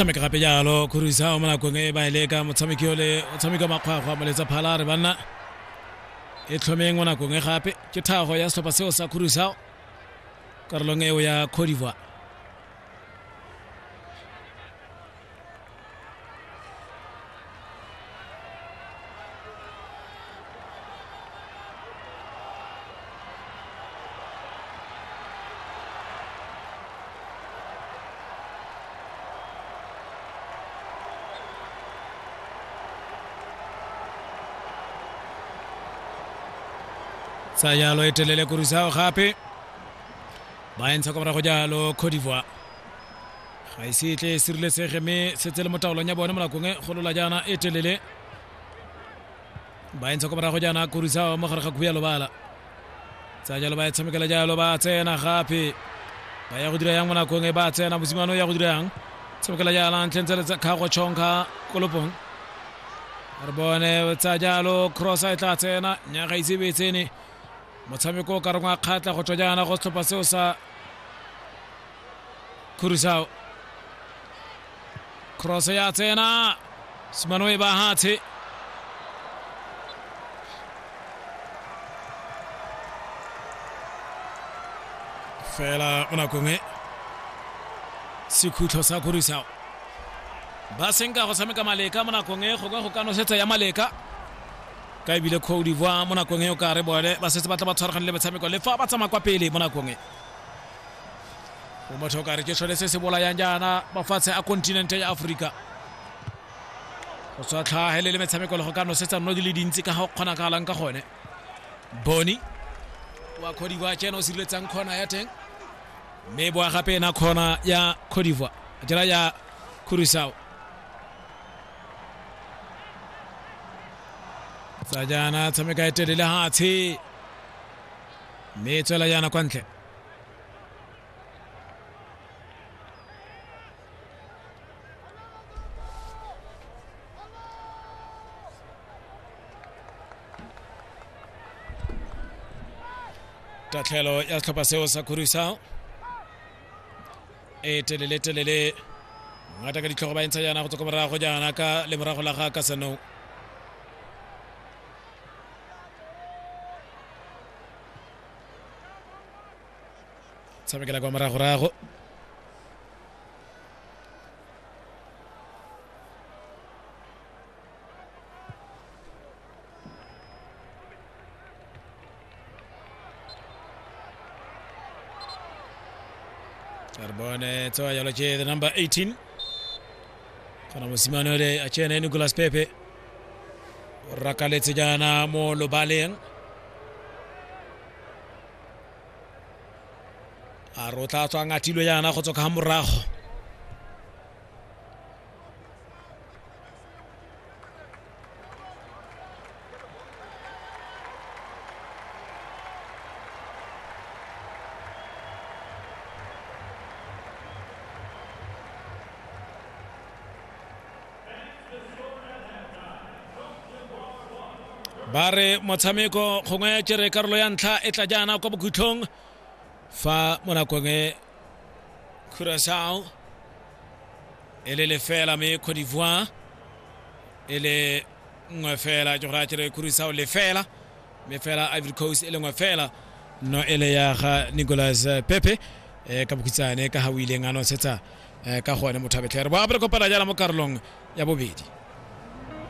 tshameka gape jalo khurisa o mo nakong e ba e leka motshameki ole o tshameka makgwakgwa moletsa phala re banna e tlhomeng mo nakong e gape ke thago ya setlhopha seo sa khurisa karolong eo ya codivoire tsaya loetelele kurisa gape ba entsha kwa morago jalo codivoire ga e se tle e sireletsege mme setse le mo taolong ya bone mo nakong e golola jaana e telele ba entsha kwa morago jaana korisao mo gare ga khuya lobala tsa jalo ba e tshamekela jalo ba tsena gape ba ya go dira yang mo nakong e ba tsena mosimane o ya go dira yang tshamekela jala ntlheng tse le tsa kgago chonka kolopong re bone tsa jalo cross a e tla tsena nyaga ise be tsene motshameko o ka reng wa kgatla go tswa jaana go setlhopha seo sa khurusao cross ya tsena simano e bahatshe fela mo nakong e sekhutlho sa khurusao ba senka go tshameka maleka mo nakong e go ka go ka nosetsa ya maleka ka ebile Côte d'Ivoire mo nakong e o kare bone ba setse ba tla ba tshwaragane le metshameko le fa ba tsamaya kwa pele mo nakong e o motho o kare ke sone se se bolayang jaana mafatshe a kontinente ya aforika go tswa tlhagelele metshameko le go ka nosetsa nno di le dintsi ka ga o kgonagalang ka gone boni wa Côte d'Ivoire ke ena o sireletsang kgona ya teng mme boa gape ena kgona ya Côte d'Ivoire jela ya Curacao tsa jaana tshameka e telele hatshe mme e tswela jaana kwa ntle tatlhelo ya setlhopha seo sa khurisao e telele telele ngata ka ditlhogo ba entsha jaana go tswa ko morago jaana ka lemorago la ga ka seno tshamekela kwa moragorago Arbone toa yalo che the number 18 kana mosimane ole a chene Nicolas Pepe o rakaletse jana mo lobaleng a re o tla tswa ngathilo yana go tswa ka morago ba re motshameko gongwe ya tšere karolo ya ntlha e tla jaana kwa bokhutlhong fa mo nakong e curacao e le lefela me cote d'ivoire e le nngwe fela ke go raya kere kurisao lefela mme fela ivory coast e le nngwe fela no e le ya ga nicolas pepe um ka bokhutshane ka ga o ileng a nosetsa um ka gone motho a betlhere bo a bere kopana jala mo karolong ya bobedi